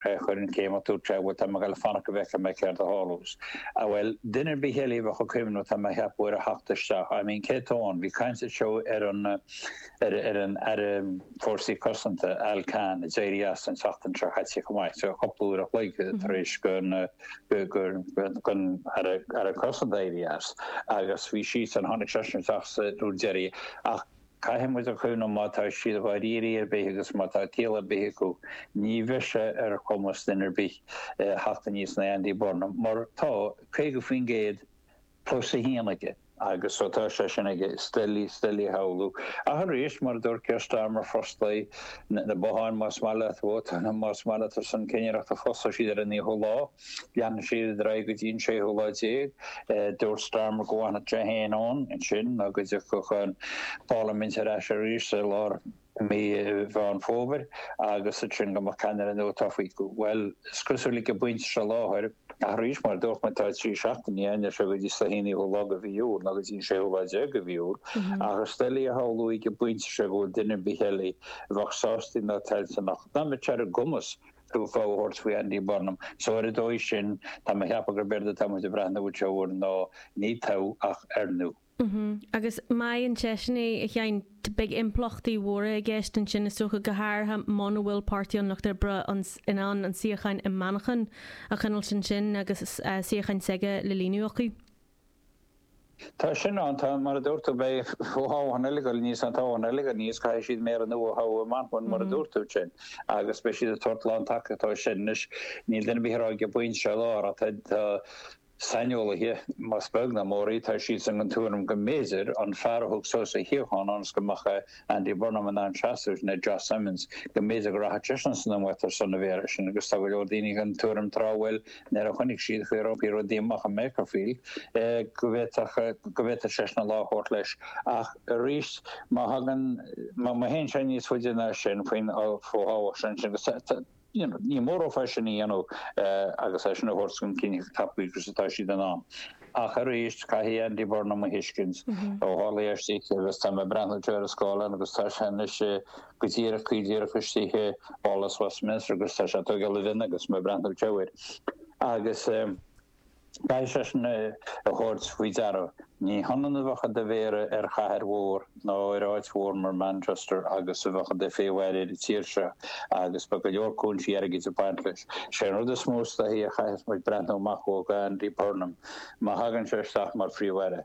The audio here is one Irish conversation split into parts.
Chuir an céimeach tú tráth, bhuel, tá mé ag goil ag fanacht go bhfeicfidh mé céard a tharlós. Ah bhuel, duine ar bith eile a bheadh ag cuimhneamh, tá mé a cheapadh, ar a theacht isteach. I mean, cé atá ann? Bhí caint anseo ar an, ar, ar an Aire Fórsaí Cosanta, Al Carns, a d'éirigh as an tseachtain seo chaite chomh maith, sea, cúpla uair a chloig tar éis gon, gur, gon Aire, Aire Cosanta éirí as. Agus bhí siadsan, tháinig seisean isteach sa uair deiridh. Ach. Caithfidh muid a chuimhneamh má tá siad dháirírí ar bith agus má tá ciall ar bith acu, ní bheidh sé ar chumas duine ar bith a theacht aníos in aghaidh Andy Burnham, mar tá 50% plus 1 aige. Agus ó tá sé sin aige, is doiligh, is doiligh a shamhlú. Ach arís, mar a dúirt Keir Starmer, fosclóidh na botháin más maith leat vótáil, más maith leat ar son cinnireachta, fosclóidh siad ar an naoú lá. Leanfaidh siad ar aghaidh go dtí an séú lá déag. Dúirt Starmer go bhfanfadh sé féin ann ansin nó go dtiocfadh an pharlaimint ar ais arís i lár mhí Mheán Fómhair agus ansin go mbeadh ceannaire nua tofa. Bhuel, is cosúil ag an bpointe seo i láthair, ach arís, mar a dúirt mé, tá trí seachtaine ann, ar sé, go dtí an naoú lá de mhí Iúil nó go dtí an séú lá déag de mhí Iúil, ach is doiligh a shamhlú ag an bpointe seo go bhfuil duine ar bith eile a bheadh sásta nó toilteanach, ná a mbeadh ar a gcumas, Fogha a thabhairt faoi Andy Burnham. So ar an dóigh sin, tá mé a cheapadh gurb éard atá muid ag breathnú isteach air ná ní toghadh ach corónú. Agus má fhaigheann seisean é, a Sheáin, beidh impleachtaí mhóra i gceist ansin is dócha, go háirithe muna bhfuil Páirtí an Lucht Oibre in ann an suíochán i Manchain a choinneáilt ansin agus suíochán s'aige le líonadh acu. Tá sin ann, tá. Mar a dúirt tú, beidh fothoghchán ag goil aníos, an toghchán ag goil aníos, caithfidh siad méara nua a thoghadh i Manchain, mar a dúirt tú ansin, agus beidh siad ag tabhairt lántacaíochta dó sin. Anois, níl duine ar bith a rá go mbeidh sé i lár, ach tá saineolaithe, más beag ná mór í, tá siad den tuairim go mb'fhéidir, an fear a thug suas a shuíochán ionas go mbeadh a. Andy Burnham in ann seasamh, sin é Josh Simons, go mb'fhéidir go rachadh seisean san iomaíocht ar son an mhéara sin agus tá go leor daoine den tuairim tráth, bhuel, nuair a chonaic siad an chaoi ar oibrigh rudaí amach i Makerfield, go bhféadfadh, go bhféadfadh seisean an lá a thabhairt leis ach arís, má thagann, má théann sé níos faide ná sin faoin, faoin fhothoghchán sin, sin, agus tá, tá. Ní mór dóibh é sin a dhéanamh agus é sin a thabhairt chun cinn chomh tapa agus atá siad in ann. Ach arís, caithfidh Andy Burnham a thuiscint, ó tharla é istigh agus tá mé ag breathnú ar an scáileán agus tá sé anois go díreach, go díreach istigh i bPálás Westminster agus tá sé ag tógáil a mhionna agus mé ag breathnú air. Agus. Caithfidh seisean é a thabhairt faoi deara. Ní hionann a bheith i do mhéara ar chathair mhór ná ar áit mhór mar Manchester agus a bheith i do Phríomh-Aire ar an tír seo agus beidh go leor cúinsí airgid ag baint leis. Is é an rud is mó is dóichí a chaithfeas muid breathnú amach ó Andy Burnham má thagann sé isteach mar Phríomh-Aire.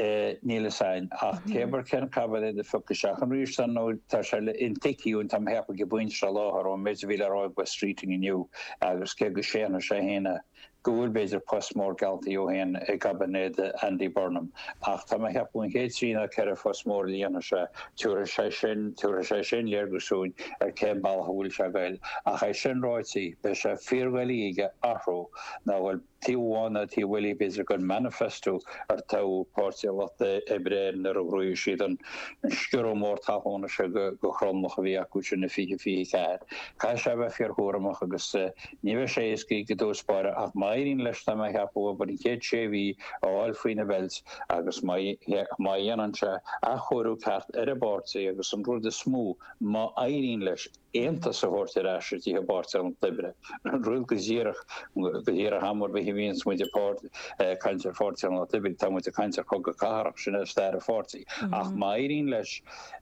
Níl 'fhios a'inn. Ach cér bith cén caibinéad a phiocfas sé an ríomh san nó tá sé intuigthe tá mé a cheapadh go pointe faoi láthair ón méid a bhí le rá ag Wes Streeting inniu agus cé go séanfaidh sé fhéin go bhfuil b'fhéidir post mór gealltaí dhó fhéin i gcaibinéad Andy Burnham ach tá mé a cheapadh an chéad trí ná ceithre phost mór a líonfaidh sé. Tiúrfaidh sé sin, tiúrfaidh sé sin léargas dúinn ar cén bealach a bhfuil sé ag goil. Ach é sin ráití, beidh sé fíordhoiligh aige athrú ná a ghoil. Taobh amháin ná taobh eile b'fhéidir den manifesto ar toghadh Páirtí an Lucht Oibre air nuair a ghnóthaigh siad an sciorradh mór talúna sin go thromlach a bhí acu sin i 2024. Caithfidh sé a bheith fíorchúramach agus ní bheidh sé éasca i dtús báire ach má éiríonn leis tá mé a cheapadh abair an chéad sé mhí a fháil faoina bheilt agus má dhéanann sé athchóiriú ceart ar an bpáirtí agus an rud is mó má éiríonn leis Aontas a thabhairt ar ais istigh i bPáirtí an Lucht Oibre. Rud go díreach, go díreach am ar bith a bhíonns muid ag caint ar Pháirtí an Lucht Oibre, tá muid ag caint ar chogadh cathartha, sin é stair an pháirtí. Ach má éiríonn leis,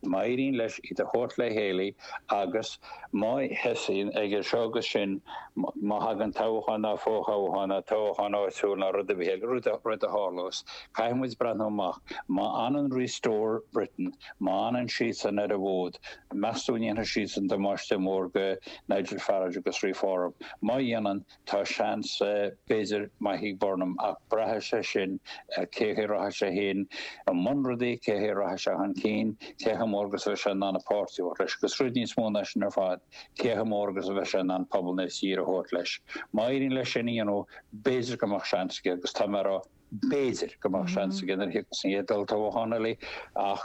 má éiríonn leis iad a thabhairt le chéile agus má thosaíonn ag seo agus sin, má thagann toghchán ná fo-thoghchán ná toghchán áitiúil ná rud ar bith eile, rud a, rud a tharlós, caithfidh muid breathnú amach, má fhanann Restore Britain, má fhanann siadsan ar an bhfód, Meas tú an ndéanfaidh siadsan damáiste mór go Nigel Farage agus Reform? Má dhéanann, tá seans, b'fhéidir, maith ag Burnham, ach braithfidh sé sin ar cén chaoi a rachaidh sé féin i mbun rudaí, cén chaoi a rachaidh sé chun cinn, cé chomh mór agus a bheidh sé in ann an páirtí a thabhairt leis, agus rud níos mó ná sin ar fad, cé chomh mór agus a bheidh sé in ann pobal na tíre a thabhairt leis. Má éiríonn leis sin a dhéanamh, b'fhéidir go mbeadh seans aige, agus tá mé ag rá b'fhéidir go mbeadh seans aige nuair a thiocfas an chéad olltoghchán eile, ach